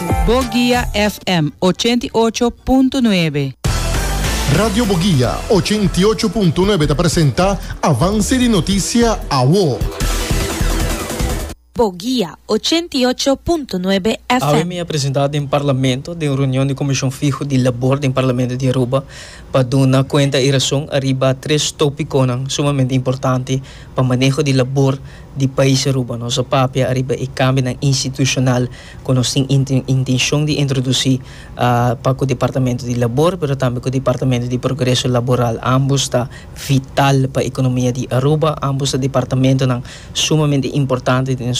Boguia FM ochenta i ocho punto nuebe. Radio Boguia ochenta i ocho punto nuebe ta presenta Avance di Noticia Awo. Boguia ochenta i ocho punto nuebe Awe mi a FM. presenta den Parlamento den reunion di Comision Fiho di Labor den Parlamento di Aruba pa duna cuenta y rason ariba tres topiconan sumamente importante pa maneho di labor di pais Aruba. Nos a papia ariba e cambionan institucional ku nos tin intenshon di introdusí pa ku Departamento di Labor pero tambe ku Departamento di Progreso Laboral. Ambos ta vital pa ekonomia di Aruba. Ambos ta departamentonan sumamente importante den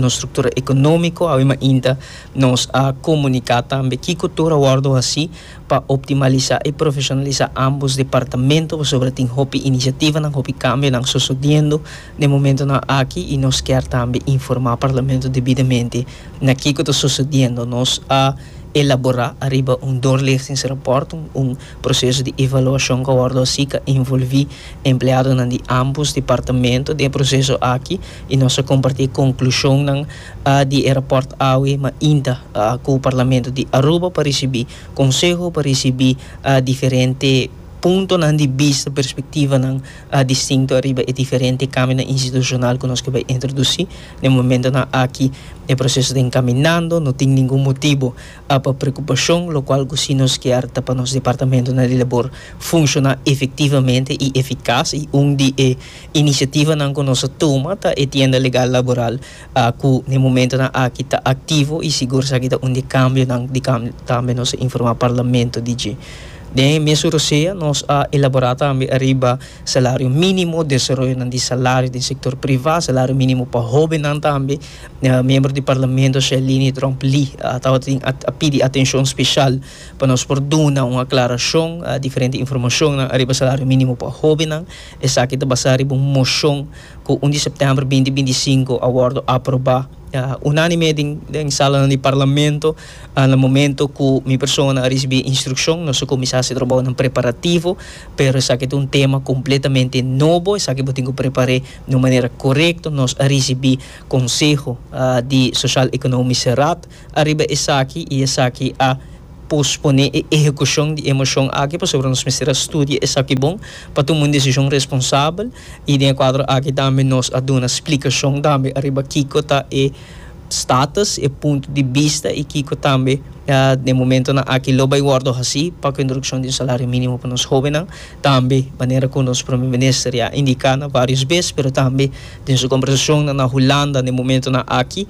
nos struktura ekonómiko. Awe mainta nos a komuniká tambe kiko tur a wòrdu hasí pa optimalisá i profeshonalisá ambos departamento pasobra tin hopi inisiativanan, hopi kambionan sosodiendo. Den momentonan aki y nos kier tambe informa Parlamento debidamente na kico ta sucediendo. Nos a elabora ariba un doorlichtingsrapport, un proceso di evaluacion cu a wordo haci cu a envolvi empleadonan di ambos departamento den e proceso aki y nos a comparti e conclusionnan di e rapport awe mainta cu Parlamento di Aruba pa ricibi conseho, pa ricibi diferente puntonan di bista, perspectivanan. a distinto riba e diferente kamionan institushonal ku nos ke bai introdusí. Den momentonan aki e proseso ta enkaminando, no tin ningun motibu pa preokupashon, lokual ku si nos kier ta pa nos departamentonan di labor funshoná efektivamente i efikas. I un di e inisiativanan ku nos a tuma ta e tienda legal laboral. Aku na e momentonan aki ta aktivo i sigur esaki ta un di e kambionan di kam tambe nos a informá Parlamento di dje. Den e mes Urosea nos a elaborá tambe ariba salario mínimo, desaroyonan di salario den sektor privá, salario mínimo pa hóbennan tambe. Miembro di Parlamento Shelini Tromp Lee tabatin a a pidi atenshon speshal pa nos por duna un aklarashon, diferente informashonnan ariba salario mínimo pa hóbennan. Esaki ta basá riba un moshon. Ku un di septèmber binti binti i sinku a wòrdu aprobá unánime den salanan di Parlamento. Na momentu ku mi persona a risibí e instrukshon nos a kuminsá hasi trabounan preparativo, pero esaki ta un tema kompletamente nobo, esaki bo tin ku prepar'é di un manera korekto. Nos a risibí konseho di Soshal Ekonomiske Raad. Ariba esaki i esaki a posponé e ehekushon di e moshon aki pasobra nos mester a studia esaki bon pa tuma un desishon responsabel i den e kuadro aki tambe nos a duna splikashon tambe ariba kiko ta e status, e punto di bista i kiko tambe den momentonan aki lo bai wòrdu hasi pa ku e introdukshon di un salario mínimo pa nos hóbennan tambe manera ku nos Prome Minister ya indiká na vários bes pero tambe den su kombersashonnan na Hulanda den momentonan aki.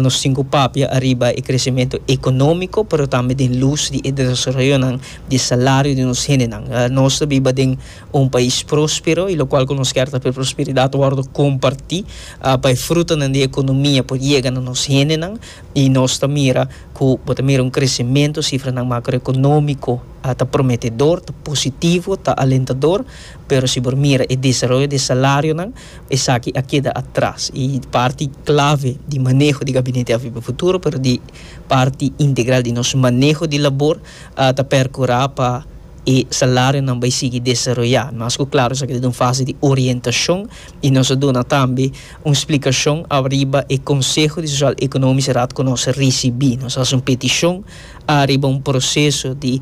Nos tin ku papia ariba e kresementu ekonómiko, pero tambe den lus di e desaroyonan di e salario di nos hendenan. Nos ta biba den un pais próspero, i lokual ku nos kier ta ku e prosperidat wòrdu kompartí pa e frutanan di e ekonomia por yega na nos hendenan. I nos ta mira ku bo ta mira un kresementu, sifranan makroekonómiko ta prometedor, ta positivo, ta alentador, pero si bo mira e desaroyo di e salarionan, Esaki a keda atras y parti clave di maneho di Gabinete AVP Futuro pero di parti integral di nos maneho di labor ta percura pa e salarionan bay sigui desaroya. Mas cu claro esaki ta den un fase di orientacion y nos a duna tambe un splicacion ariba e Conseho di Social Economisch Raad cu nos a ricibi. Nos a haci un peticion ariba un proceso di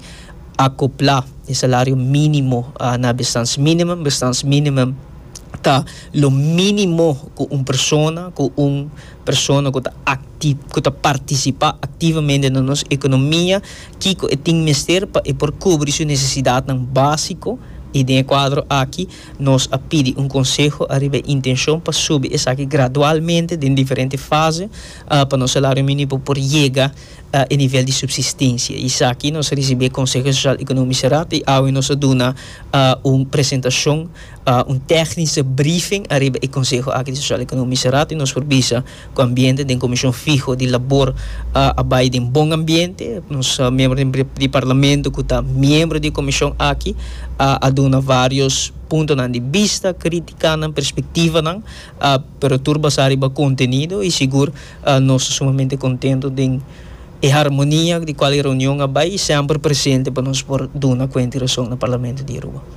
acopla e salario minimo na bestans minimum, bestans minimum. ta lo minimo cu un persona, cu un persona cu ta acti, cu ta participa activamente na nos economia, kico e tin mester pa e por cubri su necesidadnan basico, y den e cuadro aki nos a pidi un conseho ariba e intencion pa subi esaki gradualmente den diferente fase, pa nos salario minimo por yega e nivel di subsistencia. Y esaki nos a ricibi e Conseho Social Economico Raad y awe nos a duna un presentacion. un tèknische briefing ariba e konseho aki di Sosial Ekonomische Raad i nos por bisa ku ambiente den komishon fiho di labor a bai den bon ambiente. Nos miembro di di di Parlamento ku ta miembro di e komishon aki a duna vários puntonan di bista, kritikanan, perspektivanan pero tur basá riba kontenido i sigur nos ta sumamente kontento den e harmonia ku di kual e reunion a bai i semper presente pa nos por duna kuenta i rason na Parlamento di Aruba.